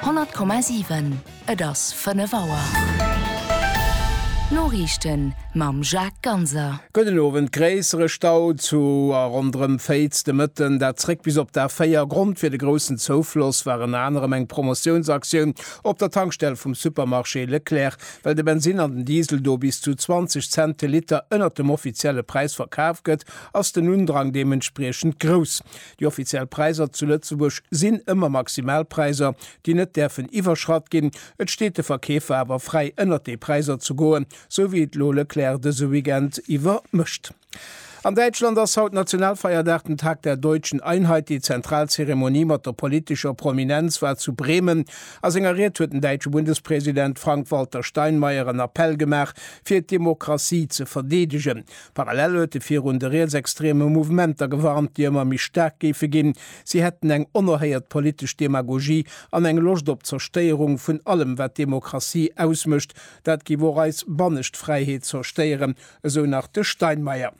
100,7 Et ass 5 Auer. D'Noriichten mam Jacques Ganser. Gudden Owend, Gréissere Stau zu a ronderëm Féiz de Mëtten, dat zréck bis op d'A4. Grond fir de groussen Zoufloss war ënner anerem eng Promotiounsaktioun op der Tankstell vum Supermarché Leclerc. Well de Bensinn an den Diesel do bis zu 20 Cent de Liter ënnert dem offizielle Präis verkaf gëtt, ass den Undrang deementspriechend grouss. Déi offiziell Präiser zu Lëtzebuerg sinn ëmmer Maximalpräiser, déi net däerfen iwwerschratt ginn. Et steet de Verkeefer awer fräi ënnert déi Präiser ze goen, sou wéi et elo Leclerc dëse Weekend iwwer mécht. An Däitschland ass haut Nationalfeierdag, den Tag der Deutschen Einheit. Déi zentral Zeremonie mat der politescher Prominenz war zu Bremen. A senger Ried huet den däitsche Bundespresident Frank-Walter Steinmeier en Appell gemaach, fir d'Demokratie ze verdeedegen. Parallel huet e virun de rietsextreme Mouvementer gewarnt, déi ëmmer méi staark géife ginn. Si hätten eng onerhéiert politesch Demagogie an eng Loscht op Zerstéierung vun allem, wat Demokratie ausmécht. Dat géif och eis bannescht Fräiheet zerstéieren, esou nach de Steinmeier.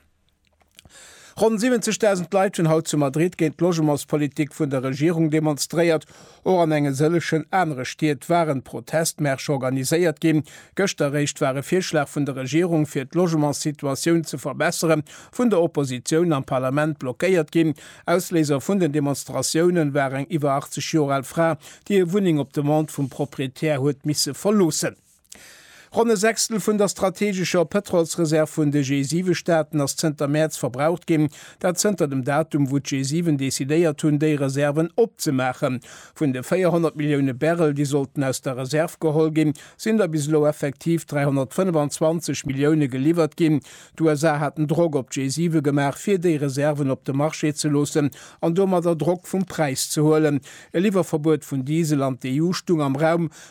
Ronn 70.000 Leit hunn haut zu Madrid géint d'Logementspolitik vun der Regierung demonstréiert. Och an enge sëllechen anere Stied waren Protestmärsche organiséiert ginn. Gëschter réischt war e Virschlag vun der Regierung fir d'Logementssituatioun ze verbessere vun der Oppositioun am Parlament blockéiert ginn. Ausléiser vun den Demonstratioune war eng iwwer 80 Joer al Fra, déi hir Wunneng op Demande vum Proprietär huet misse verloossen. Ronn e Sechstel vun der strategescher Pëtrolsreserv vun de G7-Staaten ass zënter Mäerz verbraucht ginn, dat zënter dem Datum, wou d'G7 decidéiert hunn, déi Reserven opzemaachen. Vun de 400 Millioune Barrel, déi sollten aus der Reserv geholl ginn, sinn der bis elo effektiv 325 Millioune geliwwert ginn. D'USA haten Drock op d'G7 gemaach, fir déi Reserven op de Marché ze loossen an domadder Drock vum Präis ze huelen. E Liwwerverbuet vun Diesel an d'EU stung am Raum,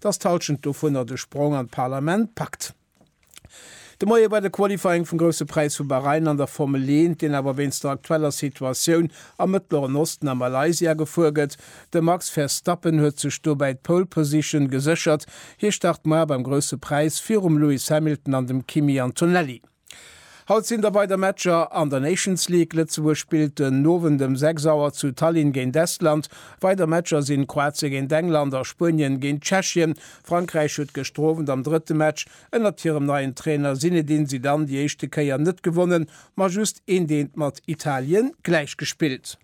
dass d'Halschent dovunner de Sprong an d'Parlament packt. De Moie war de Qualifying vum Grousse Präis vu Bahrain an der Formel 1, deen awer wéinst der aktueller Situatioun am Mëttleren Osten a Malaysia gefuer gëtt. De Max Verstappen huet sech dobäi d'Pole Position geséchert. Hie start muer beim Grousse Präis virum Lewis Hamilton an dem Kimi Antonelli. Haut sinn der weider Matcher an der Nations League. Lëtzebuerg spillt den Owend ëm 6 Auer zu Tallinn géint Estland. Weider Matcher sinn Kroatien géint England a Spuenien géint Tschechien. Frankräich huet gëschter Owend am drëtte Match ënnert hirem neien Trainer Zinedine Zidane déi éischte Kéier net gewonnen, ma just een deelt mat Italien gläichgespillt.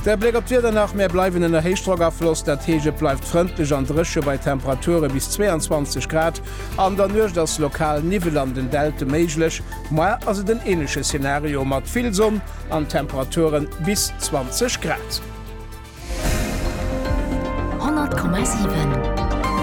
De Bléck op d'Wieder nach, Mir bleiwen ënner Héichdrockafloss, dat heescht et bleift frëndlech an dréche bei Temperature bis 22 Grad. An der Nuecht ass lokal Niwwel an den Delte méiglech, moie ass et en änleche Szenario mat vill Sonn an Temperature bis 20 Grad. 100,7.